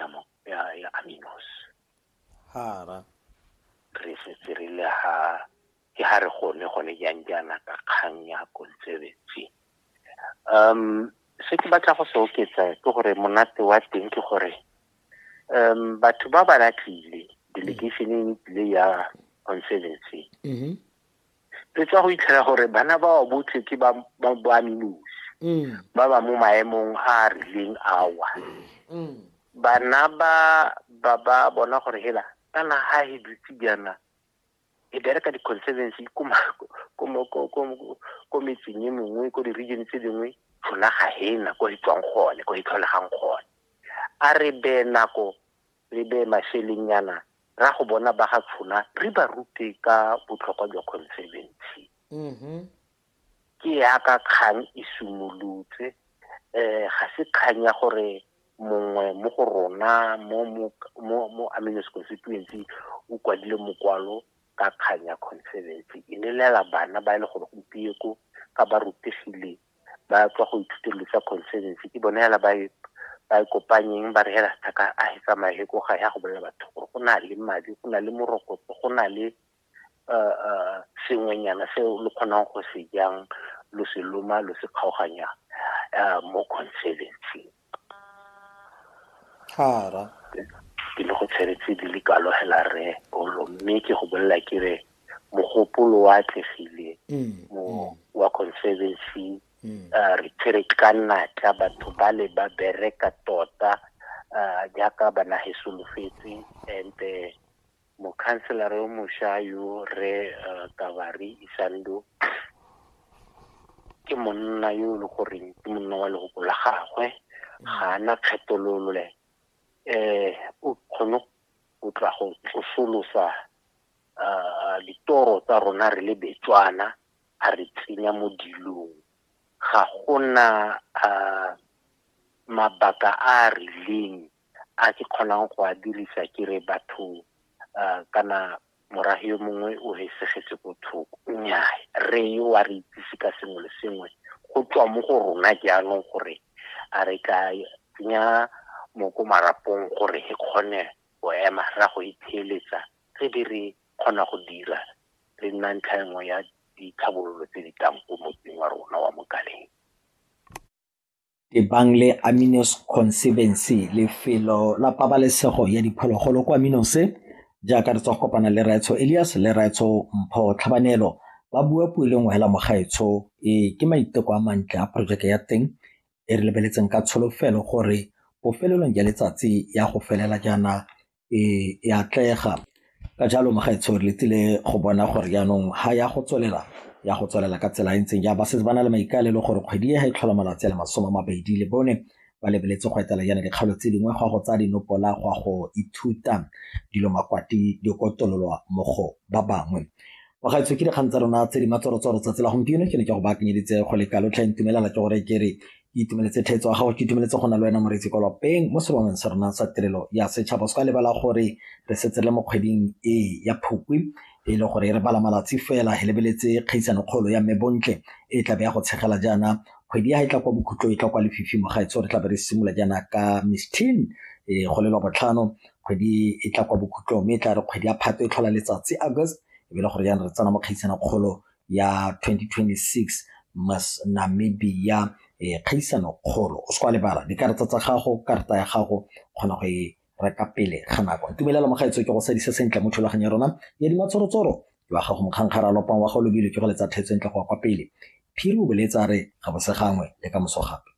damo ya ya aminos hara re setse re le ha ke ha re gone gone jang jaana ka kgang ya konsebetsi um se ke batla go se oketsa ke gore monate wa teng ke gore um batho ba ba latlile delegation e tlile ya conservancy mm-hmm. re tswa go itlhela gore bana ba wa botlhe ke ba boaminosi mm. ba ba mo maemong a a rileng awa mm. bana ba ba ba bona gore hela kana ha he dutse jaana e bereka di-conservancy ko metseng e mengwe ko di-region tse dingwe rona ga he na ko e tswang gone ko e tlholegang gone a re be nako re beye mašelengnyana ra go bona ba ga tshona re ba rute ka botlhokwa jwa conservancy mm-hmm. ke yaka kgang e simolotse um ga se kgang ya gore mongwe mo go rona mo amines constituency o kwadile mokwalo ka kgang ya conservancy e lelela bana ba e le gore gompieko ka ba rutegile ba tswa go ithuteng dilo tsa conservancy ke bone hela ba e ba e kopanyeng ba re hela sethaka a e tsamaye ko ga ya go bolela batho gore go na le madi go na le morokotso go na le eh, eh, sengwenyana se lo kgonang go se jang lo se loma lo se kgaoganyang eh, mo conservancy Thara. Ke le go tshele tse di le kalo hela Rre Olo mme ke go bolelela ke re mogopolo wa atlegile mo wa Conservancy re tshwere ka natla batho ba le ba bereka tota jaaka ba nage solofetse and Mokhanselara yo mosha yo, Rre Kabari Isando, ke monna yo e le goreng ke monna wa lehoko la gagwe, ga a na kgethololo. O kgone go tla go tsosolosa ditoro tsa rona re le Betswana, a re tsenya mo dilong. Ga go na mabaka a a rileng a ke kgonang go a dirisa ke re batho uh, kana morahi yo mongwe o hesegetse ko thoko nnyaa re yo wa re itsise ka sengwe le sengwe go tswa mo go rona jaanong gore a re ka tsenya moko marapong gore e kgone go ema ra go itheeletsa re be re kgona go dira re nna ntlha nngwe ya ditlhabololo tse di tlang ko motseng wa rona wa mokaleng tebang le Aminos Conservancy lefelo la pabalesego ya diphologolo kwa Aminos jaaka re tswa go kopana le Raetsho Elias le Raetsho Mpho Tlhabanelo ba bua puo e le nngwe hela mogaetsho e ke maiteko a mantle a porojeke ya teng e re lebeletseng ka tsholofelo gore bofelelong ya letsatsi ya go felela jaana e atlega ka jalo magaetsho re letile go bona gore jaanong ga ya go tswelela ya go tswelela ka tsela e ntseng ja ba setse ba na le maikaelelo gore kgwedi e ga e tlhola malatsi a le masome a mabedi le bone ba lebeletse go etela yana dikgalo tse dingwe go a go tsaya dinopola go a go ithuta dilo makwati di kotololwa mo go ba bangwe bagaetsho ke dikgang tsa rona tse di matsorotsoro tsatsi la gompieno ke ne ke go baakanyeditse go le kalo tlha ntumelela ke gore ke re Ke itumeletse theetso ya gago, ke itumeletse go na le wena moreetsi kwa lapeng mo sebangweng sa rona sa tirelo ya setšhaba. O se ka lebala gore re setse le mo kgweding e ya Phukwi e le gore re bala malatsi fela re lebeletse kgaisano kgolo ya mme Bontle e tlabe ya go tshegela jaana kgwedi ya ga e tla kwa bokhutlo e tla kwa lefifi mo gaetso re tlabe re simolola jaana ka Miss Teen e go lelwa botlhano kgwedi e tla kwa bokhutlong mme e tla re kgwedi ya phato e tlhola letsatsi August e be le gore jaana re tsena mo kgaisano kgolo ya 2026 Miss Namibia eh, kgaisano kgolo o se kwa lebala dikarata tsa gago karata ya gago kgona go e reka pele ga nako ntumelela mogaetso ke go sadisa sentle mo thulaganyo ya rona ya dimatsorotsoro jwa gago mokgankgara a lopang wa go lobile ke go letsa thetso ntle go wa kwa pele phiri o boletsa re ga bose gangwe le ka moso gape